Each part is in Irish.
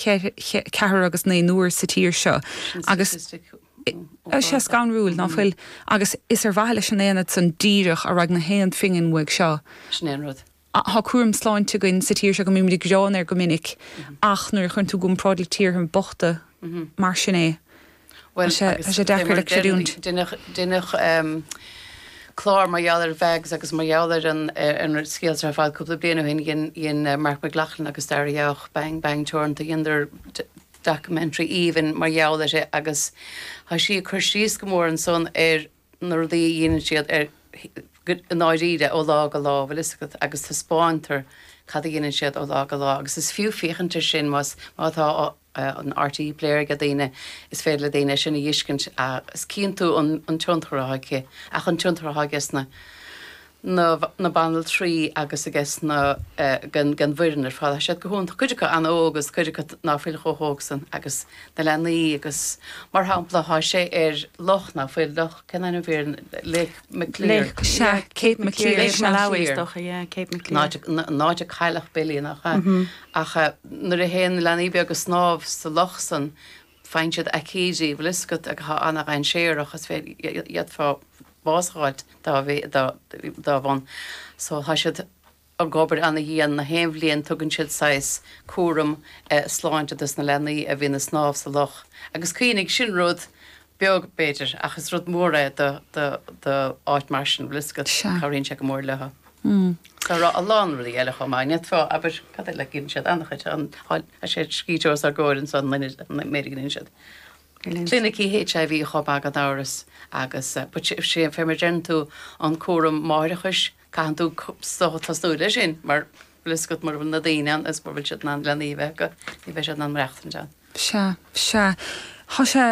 ceathair agus naonúr sa tír seo agus tá sé scanrúil, ná fuil? Agus is ar mhaithe leis an aonad san díreach a raghaidh na haon phingin uaidh seo. Sin é an rud. Tá cúram sláinte againn sa tír seo go mbímid ag gearán air go minic ach nuair a chuireann tú i gcomparáid le tíortha bochta, mar sin é. Bhuel tá sé, tá sé deacair le creidiúint. Deineadh clár mar gheall ar Mhags agus mar gheall ar an scéal ar fad cúpla bliain ó shin. Dhein Marc Mac Lochlainn agus Daire Jauch, Bang Bang Teoranta, dheineadar documentary aoibhinn mar gheall uirthi agus tá sí ag cur síos go mór ansan ar na rudaí a dhéanann siad ar, i ndáiríre, ó lá go lá, bhfuil 'fhios agat, agus taispeántar cad a dhéanann siad ó lá go lá agus is fiú féachaint air sin más, má tá, an RTÉ Player aige daoine, is féidir le daoine é sin a fhiscint agus cíonn tú an tionchar atá aici. Ach an tionchar atá aige sna na na banaltraí agus aiges na ag an ag an bhfoireann ar fad, tá siad go hon tá cuid acu an-óg agus cuid acu ná fuil chomh hóg san agus na leanaí agus mar shampla tá sé ar loch ná fuil loch cén ainm fear an Lake Maclear Lake sea Cape Maclear Lake Maclear is docha yeah Cape Maclear an áit an áit ar cailleadh Billy nach ea? Ach nuair a théann na leanaí beaga ag snámh sa loch san faigheann siad aicídí, bhfuil 'fhios agat, atá an-dhainséarach is d'fhéadfá bás a fháilt dá bharr. So tá siad ag obair an-dhian. Na haon bhliain tugann siad saghas cúram sláinte dos na leanaí a bhíonn ag snámh sa loch. Agus cuimhnigh, sin rud beag, b'fhéidir, ach is rud mór é d'áit mar sin, bhfuil 'fhios agat, cabhraíonn sé go mór leo. Tá an, a lán rudaí eile chomh maith, n'fheadar, abair, cad é le, a gheibheann siad an-chuid, an, tá sé scríte os ár gcomhair anseo, an uimhir, an méid a gheibheann siad. Clinicí HIV chomh maith gan amhras agus, but sé, fé mar a deireann tú, an cúram máithreachais, caitheann tú tosnú leis sin mar, bhfuil 'fhios agat mura bhfuil na daoine ann is mura bhfuil siad in ann leanaí a bheith acu, ní bheidh siad in ann maireachtaint ann. Sea, sea. Tá sé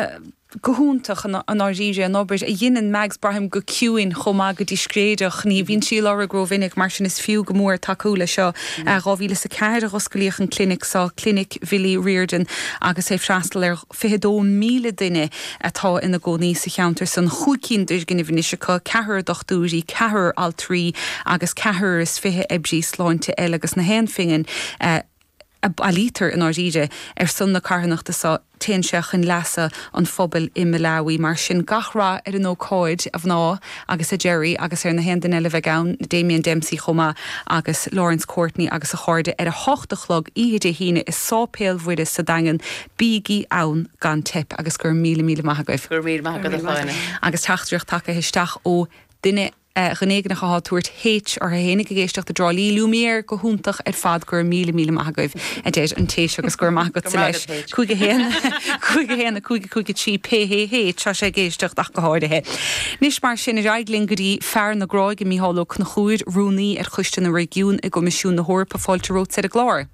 go hiontach i ndáiríre, an obair a dheineann Mags, braithim, go ciúin chomh maith go discréideach. Ní bhíonn sí á lorg rómhinic, mar sin is fiú go mór tacú leis seo. I 2004 a hosclaíodh an clinic seo, Clinic Bhilly Riordan, agus é ag freastal ar. 22,000 duine atá ina gcónaí sa cheantar san, chúig cinn d'fhoirgnimh anois acu, ceathrar dochtúirí, ceathrar altraí agus ceathrar is fiche oibrí sláinte eile agus na haon phingin a a bailítear, i ndáiríre, ar son na carthanachta seo, téann sé chun leasa an phobail i Malawi. Mar sin, gach rath ar an ócáid, a mhná agus a Gerry, agus ar na haon duine eile a bheidh ann, Damien Dempsey chomh maith agus Laurence Courtney agus a chairde, ar a hocht a chlog oíche Dé hAoine i Sáipéal Mhuire sa Daingean, Bígí ann gan teip agus go raibh míle míle maith agaibh. Go raibh míle maith agat a Shláine. Agus teachtaireacht tagaithe isteach ó duine éigineach athá tabhairt H ortha fhéinig ag éisteacht i dTrá Lí, Lumiere, go hiontach ar fad go raibh míle míle maith agaibh a deir an téacs agus go raibh maith agatsa leis H. 51 51 5 5 3 pé hé H tá sé ag éisteacht ach go háirithe. Anois mar sin, ar aghaidh linn go dtí fear na Gráige, Micheál Ó Conchúir, Rúnaí ar Choiste na Réigiún i gCoimisiún na hEorpa. Fáilte romhat, ar an gclár.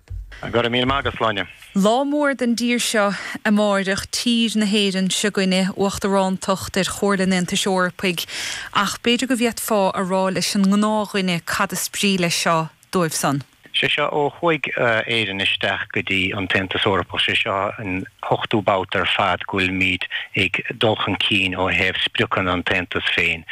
Go raibh míle maith agat, Sláine. Lá mór don dtír seo amáireach, tír na hÉireann s'againne, Uachtarántacht ar Chomhairle an Aontais Eorpaigh, ach b'fhéidir go bhféadfá a rá leis an ngnáthdhuine cad is brí leis seo dóibh san. Sé seo ó chuaigh Éirinn isteach go dtí an tAontas Eorpach, sé seo an t-ochtú babhta ar fad go bhfuilimíd ag dul chun cinn ó thaobh spriocanna an tAontas féin.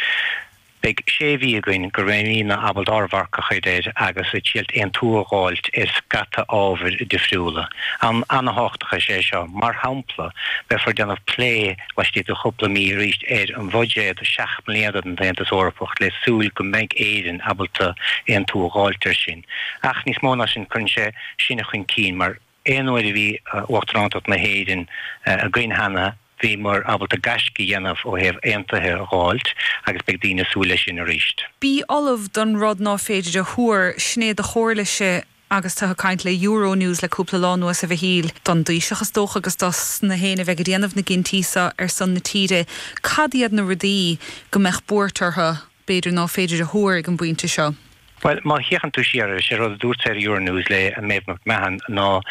Beidh sé mhí againn go mbeimídne ábalta ár marc a chur air agus ag triailt aontú a dh'fháilt ar scata ábhair difriúla. Am ana-thábhachtach is ea é seo. Mar shampla, beifear déanamh plé laistigh de chúpla mí arís ar an bhuiséad seacht mbliana don tAontas Eorpach le súil go mbeidh Éirinn ábalta aontú a dh'fháilt ar sin. Ach níos mó ná sin, cuireann sé sinn chun cinn mar Aon uair a bhí Uachtarántacht na hÉireann againn cheana, bhíomar ábalta gaisce a dhéanamh ó thaobh aontaithe a dh'fháilt agus beidh daoine ag súil leis sin arís. Bí ullamh don rud ná féidir a thuar, sin é do chomhairlese agus tú ag caint le Euronews le cúpla lá anuas, a Mhichíl. Don dTaoiseach is dócha agus dos na héinne a bheidh ag déanamh na gcinntí seo ar son na tíre, cad iad na rudaí go mbeadh buairt orthu? b'fhéidir ná féidir a thuar ag an bpointe seo. Bhuel, má fhéachann tú siar ar, sé rud a dúrtsa ar Euronews le Maeve McMahon ná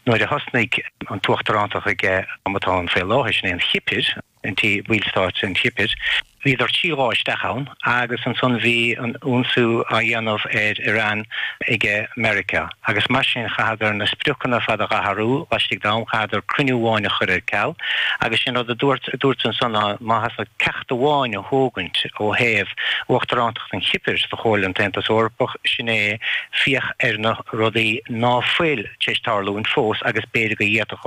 nuair a thosnaigh an tUachtarántacht aige am atá ann faoi láthair, sin é an Chipir, an ballstát an Chipir, bhíodar trí lá isteach ann agus ansan bhí an ionsaí á dhéanamh ar Iran aige Meiriceá. agus mar sin chaitheadar na spriocanna ar fad a dh'athrú laistigh d'am, chaitheadar cruinniú amháin a chur ar ceal agus sin rud a dúirt, a dúirt ansan ná má sheasfá ceacht amháin a thógaint ó thaobh uachtarántacht an Chipir sa Chomhairle an tAontas Eorpach sin é féach ar na rudaí ná fuil t'éis tarlúint fós agus b'fhéidir go d'fhéadfadh